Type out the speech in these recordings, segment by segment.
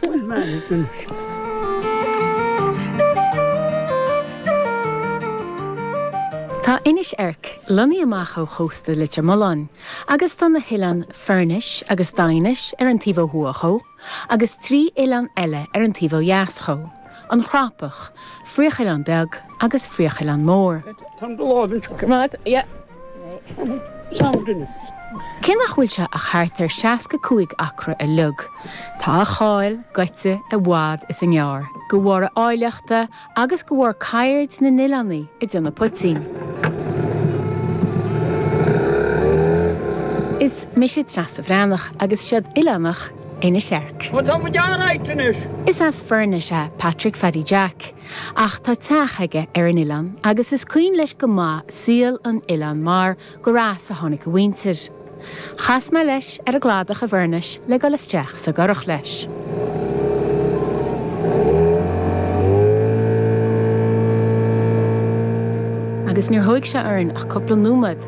Bhuail Maidhc an Uisce. Tá Inis Eirc lonnaithe amach ó chósta Leitir Mealláin agus tá na hoileáin Foirnis agus Daighinis ar an taobh ó thuaidh dhó agus trí oileán eile ar an taobh ó dheas dhó, An Chrapach, Fraochoileán Beag agus Fraochoileán Mór. Tá an lámh anseo. Coimeád, yeah. Cé nach bhfuil sé ach thart ar 65 acra uilig, tá a cháil gaite i bhfad is i ngearr, go bharr a áilleachta agus go bharr ceird na n-oileánaigh ag déanamh poitín. Is mise Treasa Bhreathnach agus seod oileánach Inis Eirc. Is as Foirnis é Patrick Phaddy Jack. Ach tá teach aige ar an Oileán agus is cuimhin leis go maith saol an Oileáin mar gur as a tháinig a mhuintir. Chas mé leis ar an gcladach i bhFoirnis le dul isteach sa gcurach leis. Agus níor thóig sé orainn ach cúpla nóiméad.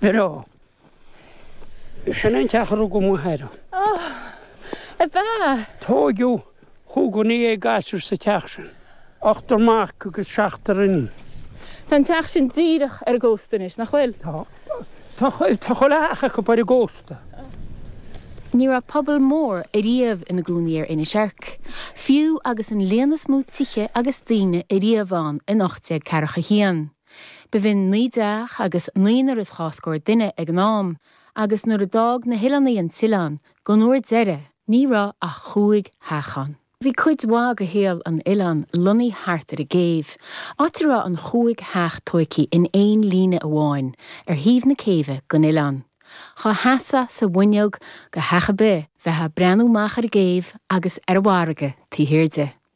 Biro. Sin an teach a rugadh mo athair ann. Oh, a b'ea? Tóigeadh chúig dhuine dhéag gasúr sa teach sin. Ochtar mac agus seachtar iníon. Tá an teach sin díreach ar an gcósta anois, nach bhfuil? Tá. Tá chuile theach acub ar an gcósta. Ní raibh pobal mór ariamh ina gcónaí ar Inis Eirc, fiú agus an líon is mó tithe agus daoine ariamh ann in ocht déag ceathracha a haon. B'in naoi dteach agus naonúr is dhá scór duine ag an am, agus nuair a d'fhág na hOileánaigh an tOileán, don uair deiridh, ní raibh ach chúig theach ann. Bhí cuid mhaith de shaol an Oileáin lonnaithe thart ar an gcéibh, áit a raibh an chúig theach tóigthe in aon líne amháin ar thaobh na céibhe den Oileán. Dhá seasfá sa bhfuinneog go theach ar bith, bheitheá ag breathnú amach ar an gcéibh agus ar an bhfarraige taobh thiar di.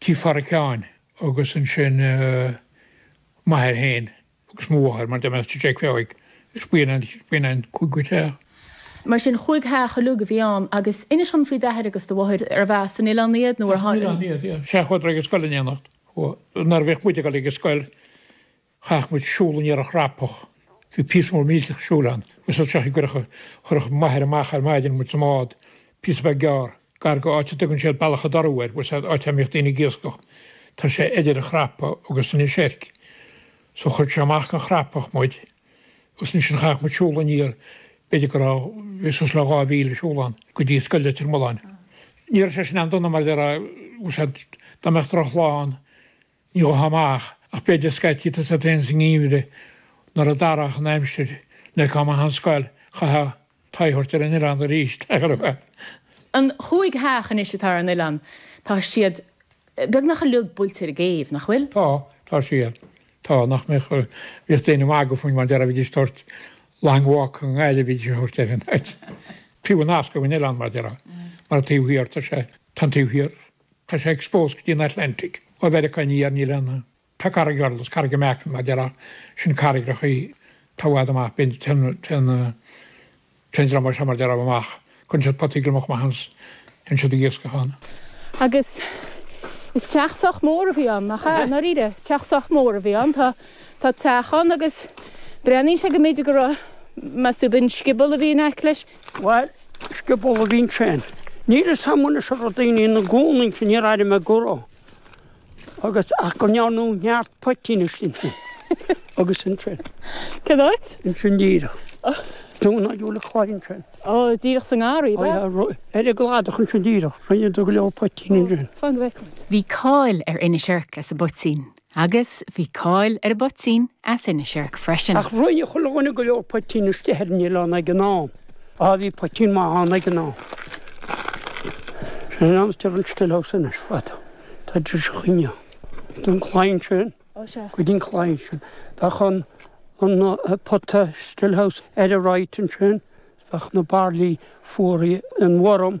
Tigh Pháraic Sheáin agus ansin m'athair féin agus mo mháthair mar d'fhan mé sa Teach Bheoigh is b'in an cúigiú teach. Mar sin, chúig theach uilig a bhí ann. Agus inis dom faoi d'athair agus do mháthair, arbh as an oileán iad nó ar tháinig siad? As an oileán iad, yeah. Sea, chuadar ag an scoil in éineacht. Nuair a bhíodh muid ag dul ag an scoil, Chaith muid siúl aniar an Chrapach. Bhí píosa mór millteach siúil ann, agus as seo i gcurracha, chuirfeadh m'athair amach ar maidin muid sa mbád, píosa beag gearr, gar go áit a dtugann siad Bealach a' Dorú air, bhuel, áit a mbíodh daoine ag iascach. Tá sé idir an Chrapach agus Inis Eirc. So, chuir sé amach go an Chrapach muid, agus ansin chaith muid siúl aniar, b'fhéidir go raibh, bhí suas le dhá mhíle siúl ann, go dtí Scoil Leitir Mealláin. Ní raibh sé sin an-dona mar, bhuel, dá mbeadh droch lá ann, Ní chomh maith ach b'fhéidir scaití agus a dtéann sa ngeimhreadh nuair a d'athródh an aimsir le cuma thon scoil, chaithfeá t'aghaidh a thabhairt ar an oileán arís, ach ar bhean. Na cúig theach anois atá ar an oileán, tá siad beagnach uilig buailte ar an gcéibh, nach bhfuil? Tá, tá siad. Tá, nach mbeadh, bhíodh daoine ag magadh fúinn mar déarfá, bhídís ag tabhairt Long Walk i nGaillimh, bhídís ag tabhairt ar an áit. Fiú an nasc ag an oileán mar déarfá, mar an taobh thiar, tá sé, tá an taobh thiar, Tá sé exposed go dtí an Atlantic ó Mheiriceá aniar, níl ann ach. Tá carraig ard, is Carraig na Meacan mar déarfá, sin carraigreachaí, tá i bhfad amach, bíonn, téann, téann, téann dream as an, mar déarfá amach, cuireann siad potaí gliomach amach ann 's téann siad ag iascach ann. Agus is teach sách mór a bhí ann, nach ea? I ndáiríre, is teach sách mór a bhí ann, tá, tá teach ann agus breathnaíonn sé go mb'fhéidir go raibh, meas tú, b'in scioból a bhí in aice leis? Bhail, scioból a bhí ansin. Níl 'fhios a'm anois a raibh daoine ina gcónaí ansin, níor airigh mé go raibh, agus, ach go ndearnadh neart poitín istigh ansin, agus ansin. Cén áit? Ansin díreach. Dún ná Dúlaigh Chlaidhe ansin. Ó, díreach sa ngarraí, ab ea? Ó yeah, ru, ar an gcladach ansin díreach, rinneadar go leor poitín ansin. Fan go bhfeicfead. Bhí cáil ar Inis Oirc as an bpoitín, Agus bhí cáil ar an bpoitín as Inis Oirc freisin. Ach rinne chuile dhuine go leor poitín istigh ar an oileán ag an am. Á, bhí poitín maith ann ag an am. Sin an am steer an still house anois fada. Tá an dris chuinge ann. Ón gclaí sin, go dtí an claí sin, bheadh an pota still house all right ansin, bheadh na bairillí fuaraithe, an worm,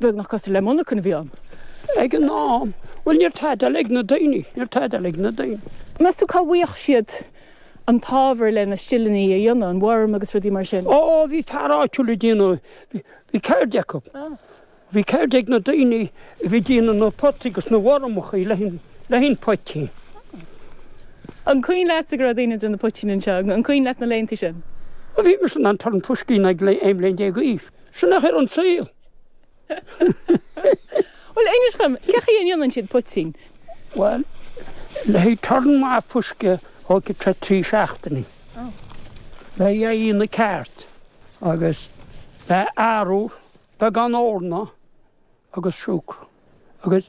beagnach cosúil le monarchan a bhí ann ag an am. Bhuel, ní raibh tada eile ag na daoine, ní raibh tada eile ag na daoine. Meas tú cá bhfaigheadh siad an t-ábhar leis na stileannaí a dhéanamh, an worm agus rudaí mar sin? Ó, bhí fear áitiúil á ndéanamh, bhí ceird acu. Bhí ceird ag na daoine. a bhí ag déanamh na bpotaí agus na wormachaí le haghaidh an phoitín. An cuimhin leatsa go raibh daoine ag déanamh poitín anseo? An cuimhin leat na laethanta sin? Ó bhí mise in ann turn fuisce a dhéanamh ag aon bhliain déag d'aois. Sin athrú ar an saol. Bhuel, Inis dhom, cé chaoi a ndéanann siad poitín? Bhuel, le haghaidh turn maith fuisce, tógfaidh sé trí seachtainí. Le haghaidh é a dhéanamh ceart, agus le arbhar, beagán eorna agus siúcra agus.